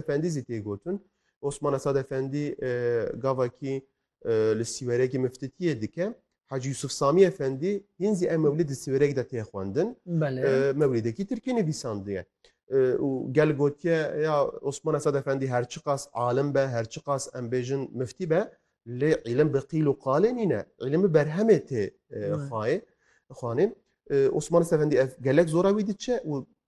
Efendî zî tê gotin. Osman Esad Efendî gavakî li sîwerekî miftitiyê dike. Hacî Yusuf Samî Efendî hîn zî ev mewlîd di sîwerek de tê xwendin. Mewlîdekî tirkî nivîsandiye. û gel gotiye ya Osman Esad Efendî her çiqas alim be, her çiqas em bêjin miftî be, lê îlim bi qîl û qalê nîne. Îlim bi berhemê tê xwayê xwanê. Osman Esad Efendî ev gelek zora wî diçe û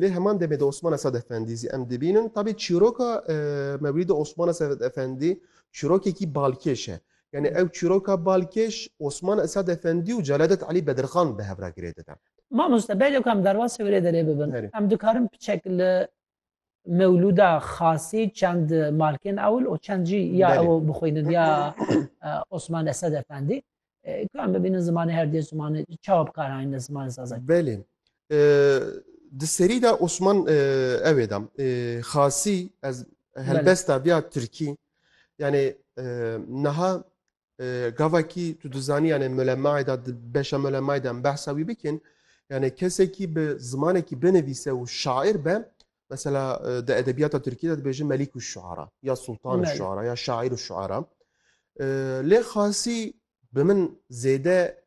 Lê heman demê de Osmana Sad Efendî zî em dibînin. Tabî çîroka Mewlîda Osmana Sad Efendî çîrokekî balkêş e. Yani ew çîroka balkêş Osman Esad Efendî û Celadet Elî Bedirxan bi hev re girêdine. Mamoste belê ku em derbasî wê rê derê bibin, em dikarin piçek li mewlûda xasî çend malkên ewil û çend jî ya ew bixwînin ya Osman Esed Efendî kan bibînin zimanê her dê zimanê çawa bikaranîn li zimanê sazan. Belê di serî de Osman ewê de xasî ez helbesta biya Tirkî yanê niha Gavakî tu dizanî yanê mulemayê de di beşa mulemayê de em behsa wî bikin. Yanê kesekî bi zimanekî binivîse û şair be mesela di edebiyata Tirkî de dibêjin melîk û şuara ya sultan û şuara ya şair û şuara. Lê xasî bi min zêde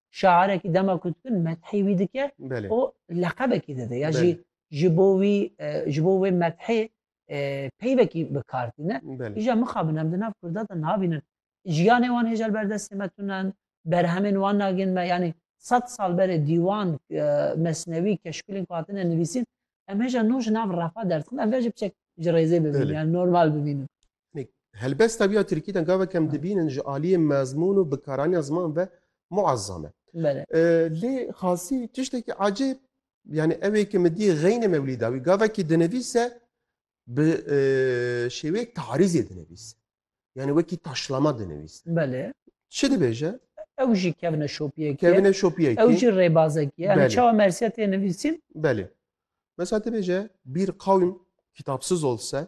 şaîrekî dema ku dibin methê wî dike û leqebekî dide ya jî ji bo wî ji bo wê methê peyvekî bi kar tîne îja mixabin em di nav kurda de nabînin jiyanê wan hêja li ber destê me tunen berhemên wan nagin me yanî sed sal berê dîwan mesnewî keşkulên ku hatine nivîsîn em hêja nû ji nav refa derdixin em vê ji biçek ji rêzê bibînin yani normal bibînin Helbesta vîya Tirkî de gavek em dibînin ji aliyê mezmûn û bikaraniya ziman ve muezzam e. Lê xasî tiştekî ecêb yani ew ê ki min dî xeynê mewlî dawî gavekî dinivîse bi şêwê tarîzê dinivîse. Yani wekî taşlama dinivîse. Belê. Çi dibêje? Ew jî kevine şopiyekê. Kevine şopiyekê. Ew jî rêbazekî. Yani çawa mersiya tê nivîsîn? Belê. Mesela dibêje bîr qawîm kitapsiz olse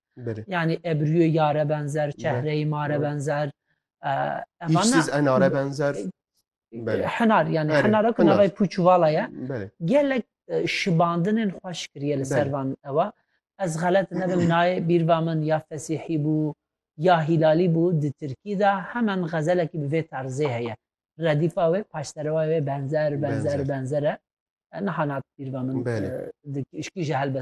Bere. Yani ebriyê yare benzer, çehreyê mare benzer. Hîşsiz enare benzer. Hinar yani hinara ku navê pûçuvala ye. Gelek şibandinên xweş kiriye li ser van ewa. Ez xelet nebim nayê bîrva min ya fesîhî bû ya hîlalî bû di Tirkî de hemen xezelekî bi vê tarzê heye. Redîfa wê paşserewa wê benzer benzer benzer e. Niha nat bîrva min dikî ji helbest.